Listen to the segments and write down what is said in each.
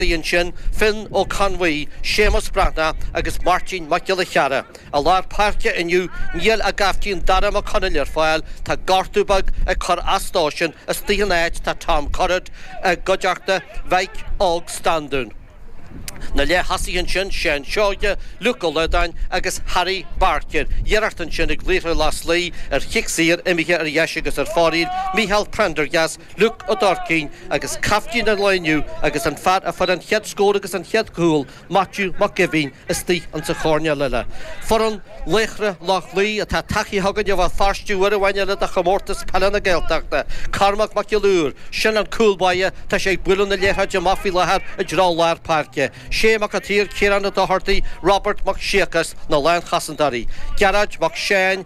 Bhí ansin Finn Ó Conmhuí, Séamus Breathnach agus Máirtín Mac Giolla Chearra i lár páirce inniu, níl a gcaiftín Dara Mac Conaill ar fáil, tá gortú beag ag cur as dósan, istigh ina áit tá Tom Currid i gcuideachta Mhic Óg Standún. Na leath-thosaithe ansin Seán Seoighe, Luke Ó Loideáin agus Harry Barker, iarracht ansin ag Laochra Loch Lao ar chic saor imithe ar dheis agus ar fóraoil, Micheál Prendergast, Luke Ó Durcáin agus caiftín an lae inniu agus an fear a fuair an chéad scór agus an chéad cúl, Maitiú Mac Gaibhín istigh insa choirnéal eile. Foireann Laochra Loch Lao atá tagtha chugainn ó Bhéal Feirste uair amháin eile do Chomórtas Peile na Gaeltachta, Cormac Mac Giolla Uidhir, sin an cúl báire, tá sé ag bualadh na liathróide amach faoi láthair i dtreo lár páirce, Shay Mac an tSaoir, Ciarán Ó Dochartaigh, Robert Mac Siacais, na lánchosantóirí, Gearóid Mac Seáin,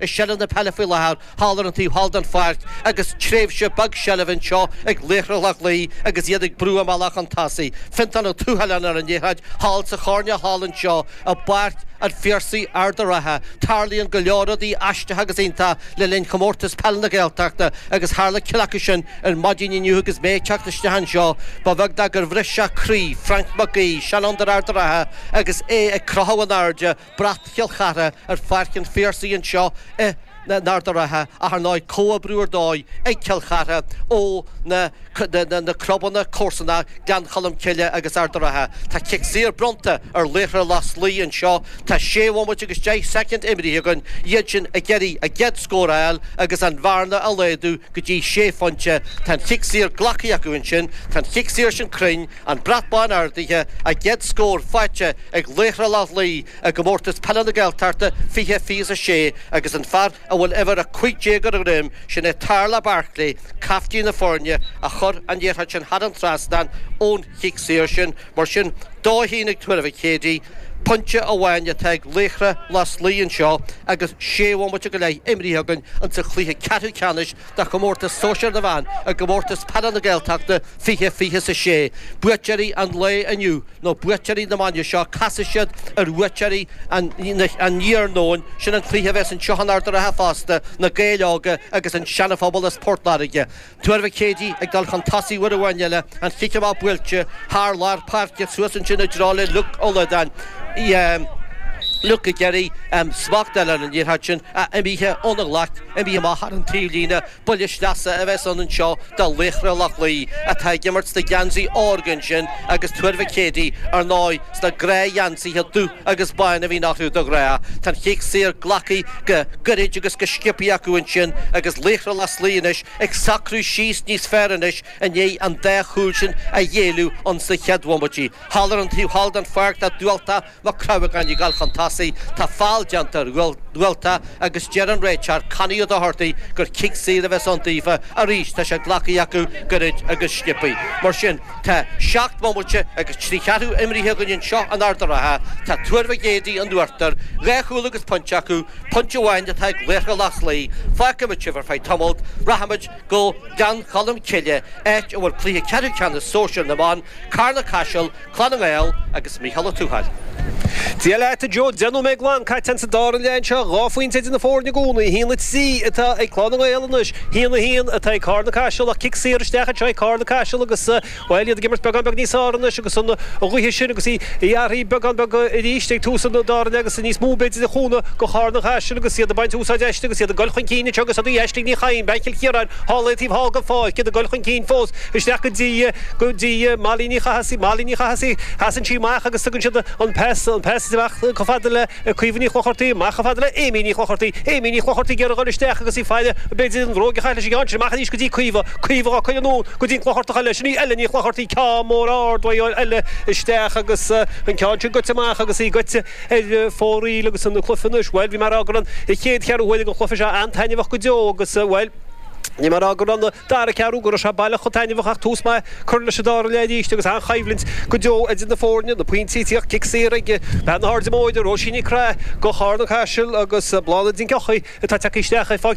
I seilbh na peile faoi láthair thall ar an taobh thall den pháirc agus tréimhse beag seilbhe anseo ag Laochra Loch Lao agus iad ag brú a mbealach chun tosaigh. Fionntán Ó Tuathaláin ar an liathróid thall sa choirnéal thall anseo i bPáirc an Phiarsaigh, Ard a' Rátha. Tarlaíonn go leor rudaí aisteacha agus iontach le linn Chomórtas Peile na Gaeltachta agus tharla ceann acu sin ar maidin inniu agus mé ag teacht isteach anseo. Ba bheag ná gur bhris sé croí Frainc Mac Aoidh, seanfhondúir Ard a' Rátha, agus é ag crochadh in airde Brat Chill Chartha ar Pháirc an Phiarsaigh anseo in Ard a' Rátha ach ar ndóigh comhoibriú ar dóigh ag Cill Chartha ó na na clubanna comharsanach Gleann Cholm Cille agus Ard a' Rátha. Tá cic saor bronnta ar Laochra Loch Lao anseo. Tá sé bhomaite agus deich soicind imrithe againn, iadsan ag iarraidh a gcéad scór a fháil agus an bhearna a laghadú go dtí sé phointe. Tá an chic saor glactha acu ansin. Tá an chic saor sin cruinn. An Brat Bán Ardaithe, a gcéad scór faighte ag Laochra Loch Lao i gComórtas Peile na Gaeltachta 20 26 agus an fear a bhfuil uimhir 15 ar a dhroim, sin é Tarla Barclay, caiftín na foirne, a chuir an liathróid sin thar an trasnán ón chic saor sin, mar sin dó a haon ag Tuar Mhic Éadaigh. Pointe amháin atá ag Laochra Loch Lao anseo agus sé bhomaite go leith imrithe againn insa chluiche ceathrú ceannais de chomórtas sóisear na bhfear i gComórtas Peile na Gaeltachta 20 26. Buaiteoirí an lae inniu nó buaiteoirí na maidne seo casfaidh siad ar bhuaiteoirí an iarnóin. Sin an cluiche a bheas anseo in Ard a' Rátha fosta, Na Gaeil Óga agus An Seanaphobal as Port Láirge. Tuar Mhic Éadaigh ag dul chun tosaigh uair amháin eile, an chic amach buailte thar lár páirce suas ansin i dtreo le Luke Ó Loideáin, Luke ag iarraidh smacht a fháil ar an liathróid sin, imithe óna ghlaic. Imreoirí amach thar an tríú líne, buille sleasa a bheas ann anseo do Laochra Loch Lao atá ag imirt sna geansaí órga ansin agus Tuar Mhic Éadaigh, ar ndóigh, sna gnáthgheansaithe dubh agus bán a bhíonn orthu de ghnáth. Tá an cic saor glactha go gairid agus go sciobtha acu ansin agus Laochra Loch Lao anois ag socrú síos níos fearr anois i ndiaidh an dá chúl sin a ghéilleadh insna chéad bhomaití. Thall ar an taobh thall den pháirc tá Dubhaltach Mac Craith ag gabháil chun tosaigh, tá feall déanta ar Dhubhaltach agus deir an réiteoir Connie Ó Dochartaigh gur cic saor a bheas ann daofa arís, tá sé glactha acu gairid agus sciobtha. Mar sin, tá seacht mbomaite agus trí cheathrú imrithe againn anseo in Ard a' Rátha, tá Tuar Mhic Éadaigh in uachtar dhá chúl agus pointe acu, pointe amháin atá ag Laochra Loch Lao, feicfimid sibh ar feadh tamaill, rachaimid go Gleann Cholm Cille áit a bhfuil cluiche ceathrú ceannais sóisir na mban, Carna-Caiseal, Clann na nGael agus Mícheál Ó Tuathail. Dia leat a Joe, deich nóiméad glan caite ansa dara leath anseo, dhá phointe idir na foirne i gcónaí, 1-3 atá ag Clann na nGael anois, 1-1 atá ag Cárna Caiseal ach cic saor isteach anseo ag Cárna Caiseal agus bhuel iad ag imirt beagán beag níos fearr anois agus an ghaoth sin agus í ag athrú beagán beag arís ag tús an dara leath agus níos mó b'fhéidir ag cúnamh do Chárna Caiseal agus iad ag baint úsáid aisti agus iad ag dul chun cinn anseo agus í ag Aisling Ní Chadhain, bean Chill Chiaráin, thall an taobh thall den pháirc, iad ag dul chun cinn fós. Isteach go dtí, go dtí Molly Ní Chathasaigh, Molly Ní Chathasaigh, casann sí amach agus tugann siad an pas, an pas isteach chomh fada le Caoimhe Ní Chlochartaigh, amach chomh fada le Amy Ní Chlochartaigh, Amy Ní Chlochartaigh ag dul isteach agus í faille, b'fhéidir an bhróg a chaitheamh leis an gceann sin, amach arís go dtí Caoimhe, Caoimhe dhá cuir anonn go dtí an Clochartach eile, sin í Ella Ní Chlochartaigh, ceann mór ard uaidh Ella isteach agus an ceann sin goite amach agus í goite ar fóraoil agus an cluiche anois, bhuel bhí mé ag rá go raibh an chéad cheathrú uaire den chluiche seo an-taitneamhach go deo agus bhuel, bhí mé a rá gur an. Dara ceathrú go raibh sé baileach chomh taitneamhach ach tús maith curtha leis an dara leath arís agus an-choimhlint go deo idir na foirne, na pointí ag tíocht, cic saor ag bean na hAirde Móire, Róisín Nic Craith, do Charna-Caiseal, agus Bláthnaid Nic Eochaidh atá tagtha isteach ag fáic